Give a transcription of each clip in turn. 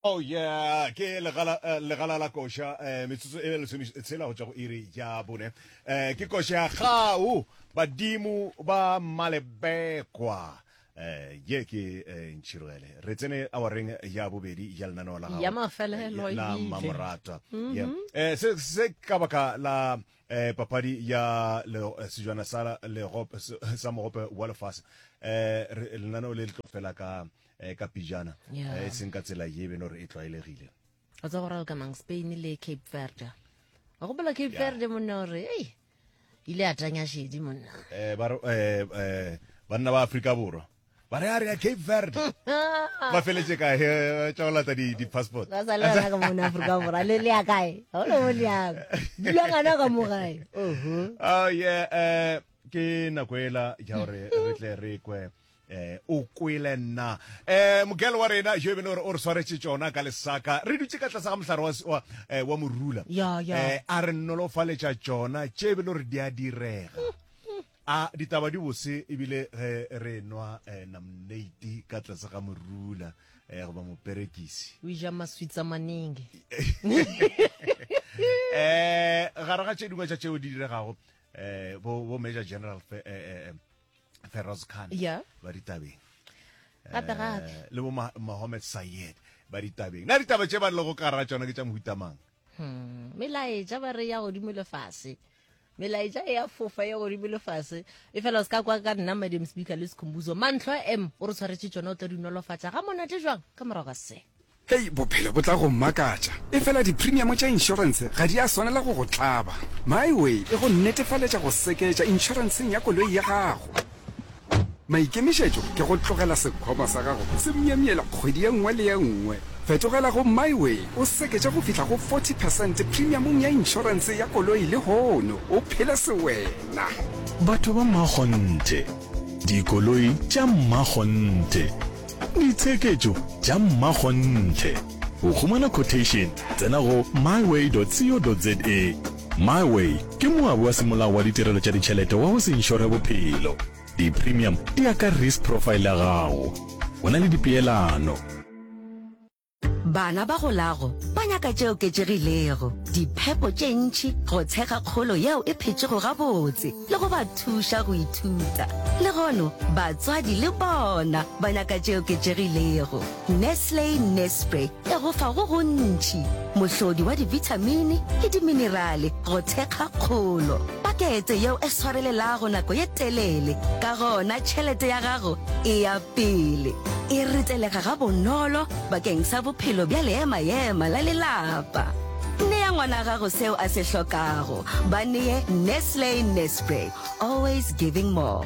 Oh yeah, ke legala eh, legala la koša eh metsotso e lesome tshela go tšwa go iri ya bone. Eh ke koša ya gau badimo ba malebekwa. Eh ye ke eh, ntšhirogele. Re tsene awareng ya bobedi ya lenaneo la gago. Ya mafelelo e la ile. mmamoratwa Yeah. eh se se ka baka la eh papadi ya le eh, sejwana sa lego sa mogope wa lefase eh lenaneo le le tlo fela ka eh, ka pijana eh, e seng ka tsela ye beno re e tlwaelegile o tsa go ralo ka mang spain le cape verde wa gopola cape verde monna gore ei ile a tanya shedi monna eh, eh, eh, banna ba afrika borwa ba re a re ya cape verde ba feletse kae eh, tša go latsa di-passport ba sa le rena ka mona aforika borwa le le ya kae ga ona mo leyang dula ngana ka mo gae oh yeah eh ke nako ela ja gore re tle re kwe eh o kwele nna eh mogelo wa rena jo e bene gore o re tshwaretse tsona ka lesaka re dutse ka tlase ga mohlare wa wa eh, wa morula Yeah, yeah. eh a re nolofaletša tsona tše e bene gore di a direga A ditaba di bose ebile ge re nwa eh, namneiti ka tlase ga morula eh, goba moperekisi. O ja maswitsa manenge. eh gare ga tše dingwe tša tšeo di diregago eh bo bo major general fe, eh, eh, eh, feroz khan Yeah. ba ditabeng Gape gape. Eh, le bo Ma- mohammed sayed ba ditabeng na ditaba tše ba lego ka gara tšona ke tša mohutamang Hmm, melaetša ba re ya godimo le fase melaetša e ya fofa ya godimo le fase e fela o se ka kwa ka nna madam speaker le sekhumbuzo mantlho a m o re tshwaretse tšona o tla di nolofatša ga monate jwang ka morago ga se hei bophelo bo tla go mmakatša e fela dipremiamo tša inšorense ga di a swanela go go tlaba myway e go nnetefaletša go seketša inšorenseng ya koloi ya gago Maikemišetšo ke go tlogela sekhwama sa gago se myemyela kgwedi ye nngwe le ye nngwe. Fetogela go MyWay o seketše go fihla go 40 percent premiamong ya inšorense ya koloi lehono o phele sewena. Batho ba mmakgonthe, dikoloi tša mmakgonthe, ditsheketšo tša mmakgonthe. Go humana quotation tsena go myway.co.za. MyWay ke moabi wa semolao wa ditirelo tša ditšhelete wa go se inšore bophelo. Di-premium di ya ka risk profile ya gago. Go na le dipeelano. Bana ba golago ba nyaka tše oketšegilego, diphepo tše ntši, go tshega kgolo yeo e phetšego gabotse le go ba thuša go ithuta. Legono batswadi le bona ba nyaka tše oketšegilego. Nestle Nespre e go fa go gontši, mohlodi wa dibithamini le diminerale go thekga kgolo. Pakete yeo e swarelelago nako ye telele, ka gona tšhelete ya gago e ya pele. E ritelega gabonolo bakeng sa bophelo bja leema-ema la lelapa. Nea ngwana gago seo a se hlokago. Ba nee Nestle Nespre, always giving more.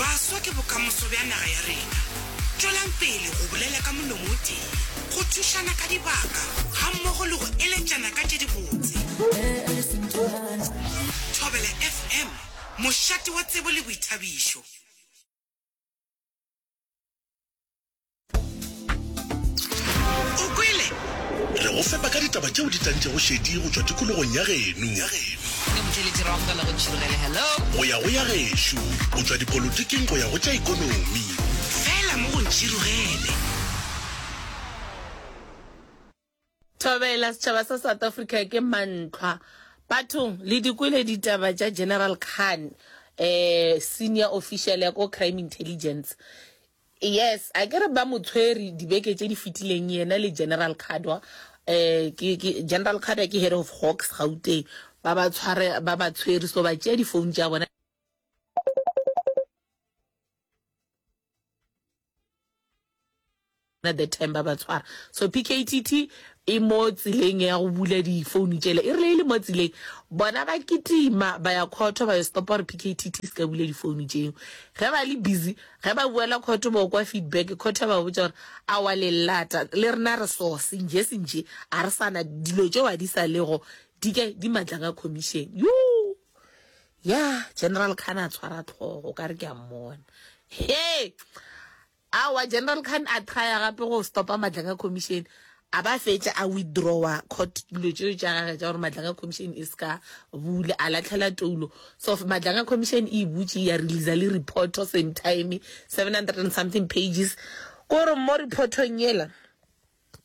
Baswa ke bokamoso bja naga ya rena. Tšwelang pele go bolela ka molomo o tee, go thušana ka dibaka gammogo le go eletšana ka tše dibotse. Thobela FM, mošate wa tsebo le boithabišo. o kwele re go fepa ka ditaba tšeo di tantšego šedi go tšwa tikologong ya geno go ya go ya gešo go tšwa dipolotiking go ya go tša ikonomi fela mo go ntšhirogele Thobela, setšhaba sa South Africa ke mantlhwa bathong. Le di kwele ditaba tša General Khan, eh, senior official ya ko crime intelligence. Yes, a ke re ba mo tshwere dibeke tše di fetileng yena le General Khadwa. Eh, ke, ke, General Khadwa ke head of Hawks Gauteng. Ba ba tshware, ba ba tshwere, so ba tšea di-phone tša bona. the time ba ba tshwara so pktt e mo tseleng ya go bula difounu tšele e rile e le mo tseleng bona ba kitima ba ya khotho ba yo stopa gore pktt se ka bula difounu tšeo ge ba le busy ge ba buela khotho ba kwa feedback khotho ya ba botsa gore a wa le lata le rena re so senje senje a re sana dilo tšeo a di sa lego di ke di matla ka commission yoo Yah General Khan a tshwara tlhogo o ka re ke a mmona. He! Aowa General Khan a trya gape go stopa Madlanga Commission a ba fetša a withdrawa court dilo tšeo tša gage tša gore Madlanga Commission e ska bula a latlhela toulo. So Madlanga Commission e butše ya releasa le reporto same time 700 and something pages. Ko re mo reportong yela.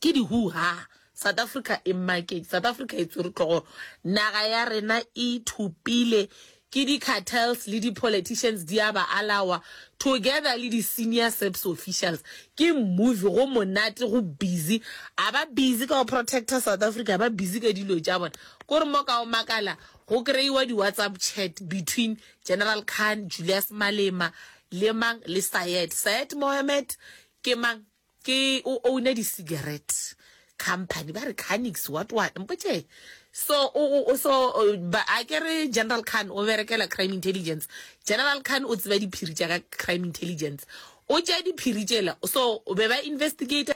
Ke di hoo ha. South Africa e market South Africa e tswere tlogo naga ya rena e thopile ke di cartels le di politicians di a ba alawa together le di senior SAPS officials ke movie go monate go busy a ba busy ka go protector South Africa ba busy ka dilo tša bona kore mo ka o makala go kreiwa di WhatsApp chat between General Khan Julius Malema le mang le Syed Syed Mohammed ke mang Ke o owner di cigarette company ba re Canix what what mpotše so o o so ba a ke re General Khan o berekela crime intelligence General Khan o tseba diphiri tša ka crime intelligence o tša diphiri tšela so be ba investigator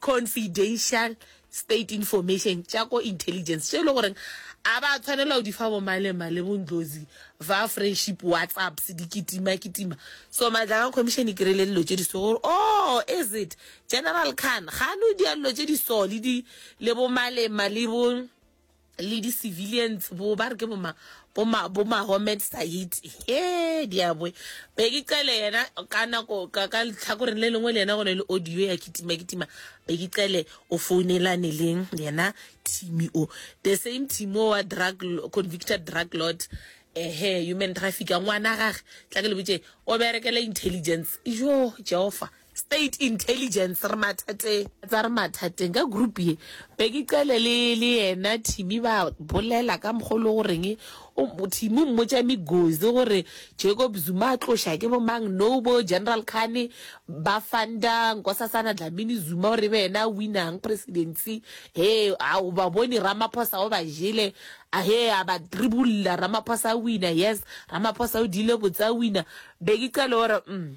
confidential state information tša ko intelligence tše e le goreng a ba tshwanela go di fa bo malema le bondlozi ba friendship whatsapps di kitima kitima so matlakang commission e kry-ile dilo tše di so gore o oh, is it general khan ga no dia dilo tše di so le di le bo malema le bo le di civilians bo ba re ke boma boma boma homed site he diabwe be ke cele yena ka nako ka ka tlhakoreng le lengwe le yena go ne le audio ya kitima kitima be ke cele o founelane le yena team o the same team o wa drug convicted drug lord ehe human traffic ngwana gage tla ke le botse o berekela intelligence yo jehova State Intelligence re mathateng. Tsa re mathateng ka group ye. Bheki Cele le le yena Thimi ba bolela ka mokgwa o le goreng o Thimi o mmotša Migozi gore Jacob Zuma a tloša ke bomang nobo General Khane ba funda Nkosasana Dlamini Zuma gore e be yena a winang presidency he a o ba bone Ramaphosa o ba jele a he a ba tribulla Ramaphosa a wina yes Ramaphosa o dile botse a wina Bheki Cele o re mm